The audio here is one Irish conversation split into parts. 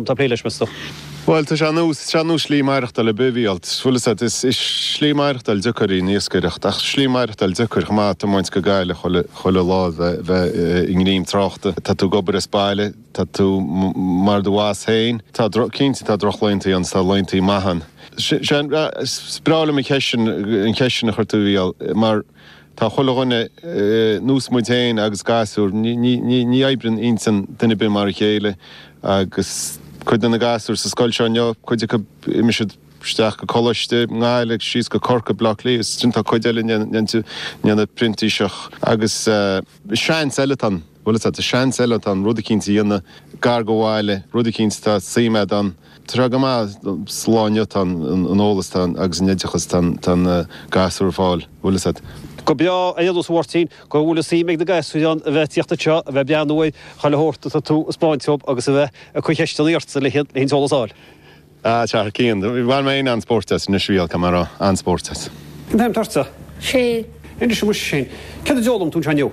Tá plé leis me sa. Bhuel, tá sé nós, is é nós slí maireachtáil ar bith bhuel, bhfuil fhios a't, is é slí maireachtáil deacair í an iascaireacht ach slí maireachtáil deacair chomh maith tiomáint go Gaillimh chuile, chuile lá bheith, bheith i ngreim tráchta, tá tú ag obair as baile, tá tú mar do bhoss féin, tá droch, cinnte tá drochlaethanta ann 's tá laethanta maith ann. Sé, sé an, is breá liom an cheist sin, an cheist sin a chuir tú a Mhícheáil mar, Tá chuile dhuine, nós muid féin agus gasúir, ní oibreann intinn duine ar bith mar a chéile agus cuid de na gasúir sa scoil seo inniu, cuid acu imeoidh siad isteach go coláiste i nGaillimh, síos go Corcaigh, Bleá Cliath is ansin tá cuid eile ag déanamh printíseacht agus seans eile tá an, bhuel is seans eile tá an rud eicínt a dhéanamh gar do bhaile, rud eicínt atá suim agat ann. Tráth go maith slán leat, tá an eolas, tá an, agus an oideachas, tá an, tá na gasúir ag fáil, go bhfuil fhios a't. Go breá, a Aonghus Mháirtín, go bhfuil fhios a'm ag na gasúir in ann a bheith ag tíocht anseo, a bheith ag breathnú ar chuile shórt atá tú a 'spáint dhóib agus a bheith ag cur ceisteannaí ortsa le haghaidh, le haghaidh an t-eolas a fháil. A Chathair Cian, do, bhain mé féin an-spórt as anois, bhuel, caithfidh mé a rá, an-spórt as. Cén t-ainm atá ortsa? Shane. Inis dom muise Shane, céard a d'fhoghlaim tú anseo inniu?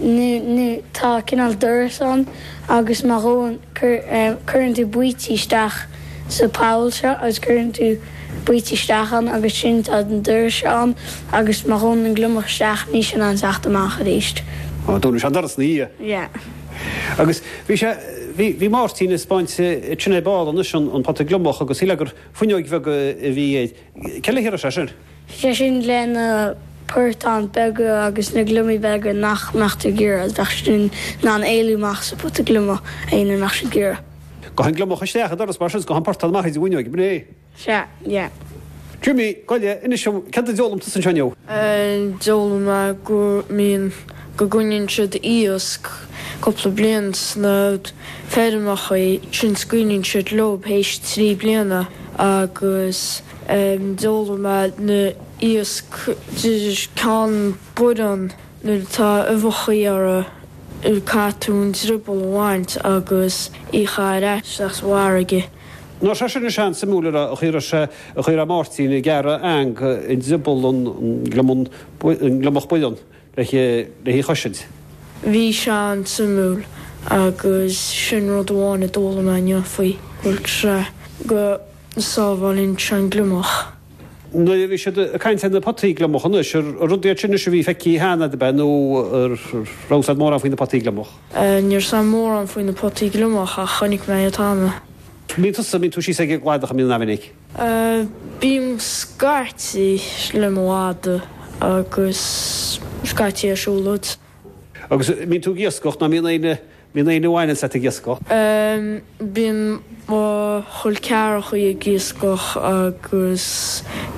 nó tá cineál doras ann agus má ghabhann, cuireann tú baoite isteach sa bpoll seo agus cuireann tú baoite isteach ann agus ansin tá an doras seo ann agus má ghabhann an gliomach isteach níl sé in ann teacht amach arís. Ó, dúnann sé an doras ina dhiaidh. Yeah. Agus bhí sé, bhí, bhí Máirtín ag spáint dhúinn ar ball anois an, an pota gliomach agus shíl mé gur fuinneoig bheag a bhí Cé le haghaidh a raibh sé sin? Bhí sé sin le na portáin beaga agus na gliomaigh beaga nach mbeadh tú ag iarraidh, bheadh siad in ann éalú amach as an bpota gliomach, aon uair nach mbeadh tú ag iarraidh. Gabhann gliomach isteach an doras mar sin is gabhann portán amach tríd an bhfuinneoig, ab in é? Sea, yeah. Jimmy, goile, inis dom, céard a d'fhoghlaim tusa anseo inniu? D'fhoghlaim mé go mbíonn. go gcoinníonn siad iasc cúpla bliain sna feirmeachaí ansin scaoileann siad leob théis trí bliana agus d'fhoghlaim mé na iasc de ceann boireann nuair atá uibheachaí orra caithfidh tú an drioball a bhaint agus í a chaitheamh ar ais sa bhfarraige. Now sé sin, bhí sé an-suimiúil, nach raibh, an chaoi a raibh sé, an chaoi a raibh Máirtín ag gearradh eang i ndrioball an gliomach baineann. le haghaidh í a chosaint. Bhí sé an-suimiúil agus sin rud amháin a d'fhoghlaim mé inniu faoi, bhuel, sraith go sábháileann sé an gliomach. Nuair a bhí siad ag caint ar na potaí gliomach anois, ar rud iad sin anois a bhí feicthe cheana a't ab ea nó an raibh fhios a't mórán faoi na potaí gliomach? Ní raibh fhios a'm mórán faoi na potaí gliomach ach chonaic mé iad cheana. An mbíonn tusa, an mbíonn tú síos ag an gcladach an mbíonn? An-mhinic. Bíonn scaití le maide agus scaití ag siúlóid. Agus an mbíonn tú ag iascach nó an mbíonn éinne, mbíonn éinne a bhaineann leat ag iascach? Bíonn mo chol ceathracha ag iascach agus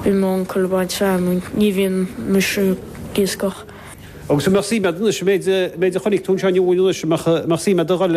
bíonn m'uncail ag baint feamainne ní bhíonn mise ag iascach. Agus an mbeadh suim a'd anois, an méid a chonaic tú anseo inniu anois, an mbeadh suim a'd a dhul